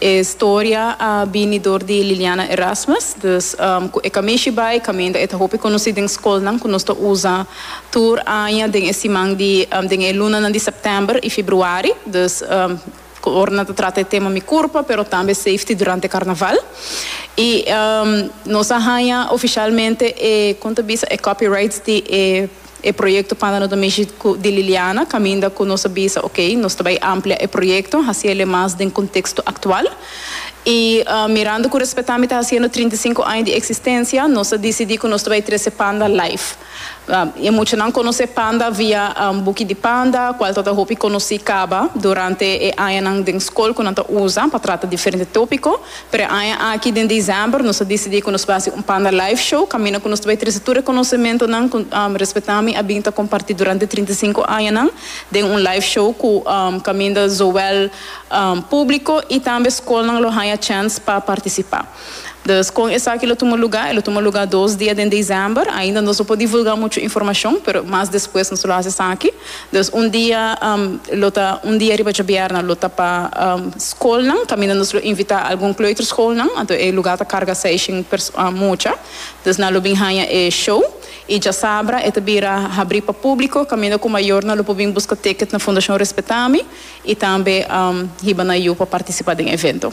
E storia a bini dor di Liliana Erasmus, dus ku e kamishi bai kaminda e ta hopi konosí den skolnan ku nos ta usa tur aña den e siman di den e lunanan di sèptèmber i februari, dus ora nan ta trata e tema Mi Kurpa pero tambe Safety Durante Karnaval. I nos a haña ofishalmente e kon ta bisa e copyrights di e. E proyekto Panda no ta mishi ku di Liliana kaminda ku nos a bisa ok nos ta bai amplia e proyekto hasi el'e mas den konteksto aktual i mirando ku Respetá mi ta hasiendo trinta i sinku aña di eksistensia nos a disidí ku nos ta bai trese Panda live i muchanan konos'é Panda via Buki di Panda kual ta ta hopi konosí kaba durante e añanan den skol ku nan ta usa pa trata diferente tópiko Preaña aki den December nos a disidí ku nos bai hasi un Panda Live Show kaminda ku nos ta bai trese tur e konosementonan ku Respetami a bin ta kompartí durante trinta i sinku añanan den un live show ku kaminda zowel públiko i tambe skolnan lo haña chèns pa partisipá. Dus kon esaki lo tuma lugá? E lo tuma lugá dos dia den December. Ainda nos no por divulgá muchu informashon pero mas despues nos lo hasi esaki. Dus un dia lo ta un dia riba djobièrna lo ta pa skolnan kaminda nos lo invitá algun kleuterskolnan anto e lugá ta karga seishen mucha dus nan lo bin haña e show i djasabra e ta bira habrí pa públiko kaminda ku mayornan lo por bin buska ticket na Fundacion Respetami i tambe hiba nan yu pa partisipá den evento.